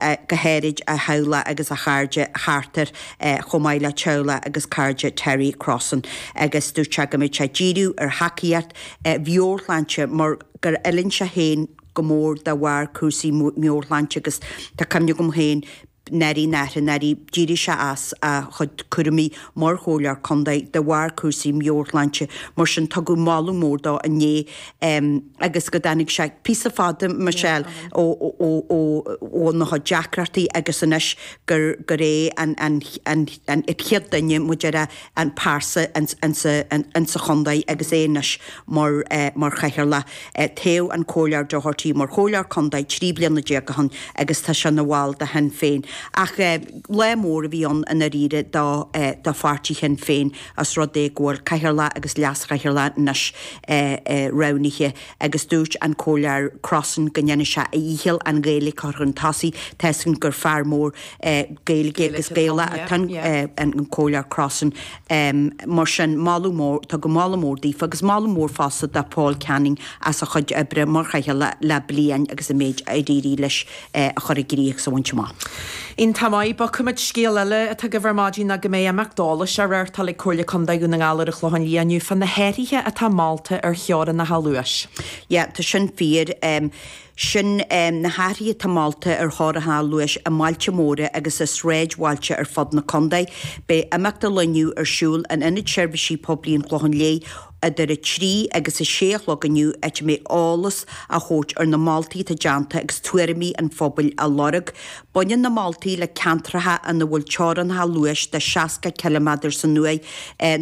go háirid a theaghlach agus a chairde thart air chomh maith le teaghlach agus cairde Terry Crossan agus dúirt sé go mbeadh sé ag díriú ar thacaíocht mheabhairshláinte mar gur fhulaing sé féin go mór de bharr cúrsaí meabhairshláinte agus tá cuimhne agam féin nuair a nuair a nuair a d'éirigh sé as a chuid cúraimí mar chomhairleoir contae de bharr cúrsaí meabhairshláinte mar sin tugadh moladh mór dó inné agus go dtáinig sé píosa fada, Michelle, ó na deacrachtaí agus anois gur é an chéad duine mar a déarfá an príomhphearsa insa chontae agus é anois mar chathaoirleach. Toghadh an Comhairleoir Doherty mar Chomhairleoir Contae trí bliana déag ó shin agus tá sé ina bhall de Shinn Féin. Ach lá mór a bhí ann i ndáiríre do Pháirtí Shinn Féin. os rud é go bhfuil cathaoirleach agus leaschathaoirleach anois roghnaithe, agus dúirt an Comhairleoir Crossan go ndéanfaidh sé a dhícheall an Ghaeilge a chur chun tosaigh toisc gur fear mór Gaeilge agus Gaeilgeoir atá an Comhairleoir Crossan. Mar sin, tugadh moladh mór daofa, agus moladh mór fosta do Paul Canning as a chuid oibre mar chathaoirleach le bliain agus an méid a d'éirigh leis. a chur i gcrích 's a bhaint amach. Iontach maith, muise, scéal eile atá agaibh ar maidin ná go mbeidh imeacht eolais á reáchtáil ag Comhairle Contae Dhún na nGall ar an Chlochán Liath inniu fá na hathraithe atá molta ar theorannacha luais. Yeah, tá sin fíor. Sin na hathraithe atá molta ar theorannacha luais i mbailte móra agus i sráidbhailte ar fud na contae. Beidh imeacht an lae inniu ar siúl in Ionad Seirbhísí Poiblí an Chlocháin Léith Idir a trí agus a sé a chlog inniu áit a mbeidh eolas á thabhairt ar na moltaí atá déanta agus tuairimí an phobail á lorg. Baineann na moltaí le ceantracha ina bhfuil teorannacha luais de 60 cileameadar san uair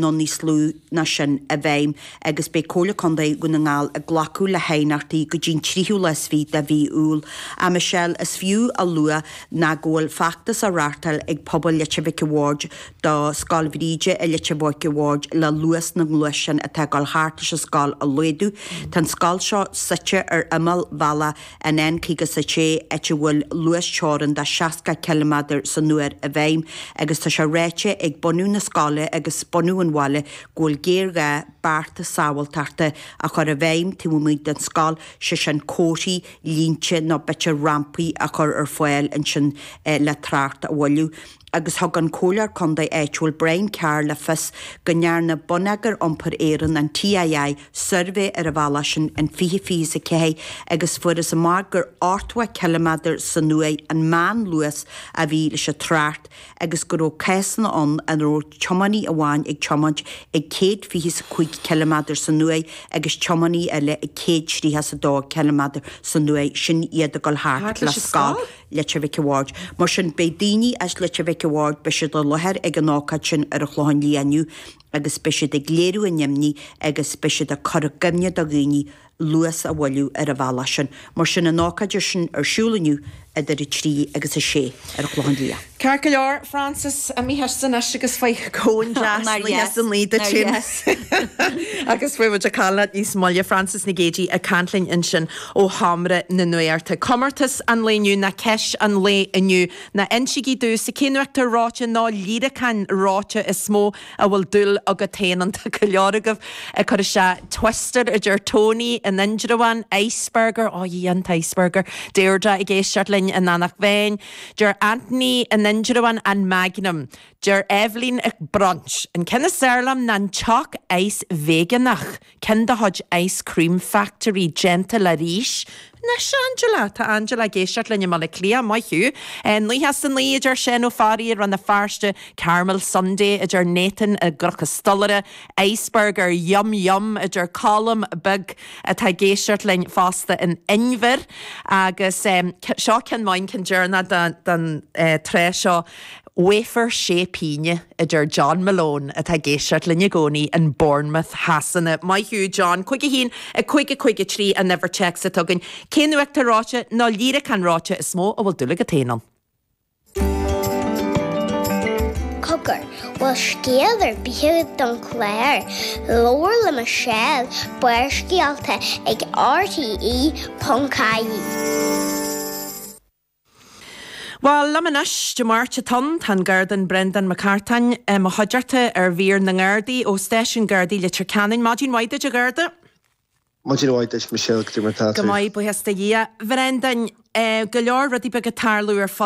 nó níos lú ná sin i bhfeidhm agus beidh Comhairle Contae Dhún na nGall ag glacadh le haighneachtaí go dtí'n tríú lá is fiche de mhí Iúil. A Michelle, is fiú a lua ná go bhfuil feachtas á reáchtáil ag Pobal Leitir Mhic a' Bhaird, do Scoil Bhríde i Leitir Mhic a' Bhaird le luas na ngluaisteán atá ag dul thart leis an scoil a laghdú. Tá an scoil seo suite ar imeall bhealach an N56 áit a bhfuil luasteorainn de 60 ciliméadar san uair i bhfeidhm agus tá sé ráite ag bunadh na scoile agus bunadh an bhaile go bhfuil géarghá bearta sábháilteachta a chur i bhfeidhm taobh amuigh den scoil, sé sin comharthaí, línte nó b'fhéidir rampaí a chur ar fáil ansin le trácht a mhoilliú. agus thug an Comhairleoir Contae áitiúil Brian Carr le fios go ndearna Bonneagar Iompair Éireann, an TII, suirbhé ar an bhealach sin in 2024 agus fuarthas amach gur 80 ciliméadar san uair an meánluas a bhí leis an trácht agus go raibh cásanna ann ina raibh tiománaí amháin ag tiomáint ag céad fiche's a cúig ciliméadar san uair agus tiománaí eile ag céad tríocha 's a dó ciliméadar san uair, sin iad ag dul thart le scoil. Leitir Mhic a' Bhaird. Mar sin, beidh daoine as Leitir Mhic a' Bhaird, beidh siad i láthair ag an ócáid sin ar an Chlochán Liath inniu agus beidh siad ag léiriú a n-imní agus beidh siad ag cur i gcuimhne do dhaoine luas a mhoilliú ar an bhealach sin. Mar sin, an ócáid sin ar siúl inniu idir 3 agus 6 ar an Chlochán Liath. Ceart go leor, Frances, imídh san anois agus faigh cón deas. Nár dheas, nár dheas! Nár dheas! agus beidh muid ag caint leat níos moille, Frances Nic Géidigh ag caint linn ansin. ó sheomra na nuachta. Comórtas an lae inniu ná ceist an lae inniu. Ná insígí domhsa cén uachtar reoite nó líreacán reoite is mó a bhfuil dúil agat féin ann. Tá go leor agaibh ag cur isteach? Twister, a deir Tony in Indreabhán. Iceberger, oh yeah, an t-Iceberger. Deirdre ag éisteacht linn in Eanach Mheáin. Deir Anthony in Indreabhán an Magnum. Deir Eibhlín an Brunch. An ceann is fearr liom ná an Choc Ice veigeánach. ceann de chuid Ice Cream Factory déanta le rís. Nice, Angela! Tá Angela ag éisteacht linn i mBaile Átha Cliath, maith thú! Nócha is a naoi, a deir Seán Ó Fearraigh i Rann na Feirste, Caramel Sundae, a deir Nathan i gCnoc an Stolaire, Iceberger, yum yum, a deir Colm beag atá ag éisteacht linn fosta in Inbhir, agus seo ceann maith, an ceann deireanach den tsraith seo. 'Wafer sé pingine', a deir John Malone, atá ag éisteacht linn i gcónaí in Bournemouth Shasana. Maith thú, John. 51, 55, 53 an uimhir téacs atá againn. Cén uachtar reoite nó líreacán reoite is mó a bhfuil dúil agat féin ann? Cogar, bhfuil scéal ar bith agat don chlár? Labhair le Michelle, Barrscéalta ag RTÉ.ie. Bhuel, liom anois, Dé Máirt atá ann, tá an Garda Brendan Mac Artáin, i mo chuideachta, ar mhír na nGardaí, ó Stáisiún Gardaí Leitir Ceanainn. Maidin mhaith duit, a Gharda. Maidin mhaith duit, Michelle. Cad é mar atá tú. Go maith, buíochas do Dhia. Bhrendan, go leor rudaí beaga ag tarlú ar fud.